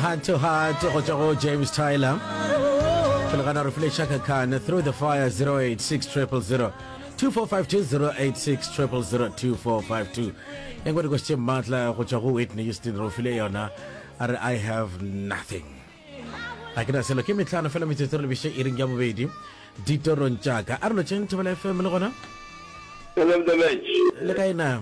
Heart to heart go tšwa go James Tyler. Pele gana re file Chaka Khan through the fire 086 000 2452 086 000 2452. E ngwe dikoši tše maatla go tšwa go Whitney Houston re o file yona a re I have nothing. a ke na selo ke metlhano fela metsotso re lebiše e reng ya bobedi ditorong tšaka a re lotšeng thobela fm le gona Hello, Mdabech. le kae na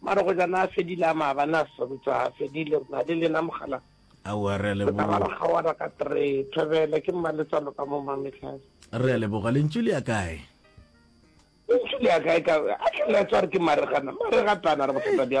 Mara go ja na fedile a maba na sebetsa ha fedile na le lena mogala Aowa re a leboga. Re tla ba re kgaoana ka three. Thobela ke mmaletsalo ka mo mametlhase. Re a leboga lentšu le ya kae? Lentšu le ya kae ka a tlhela a tswa re ke maregana maregatana re bothata bja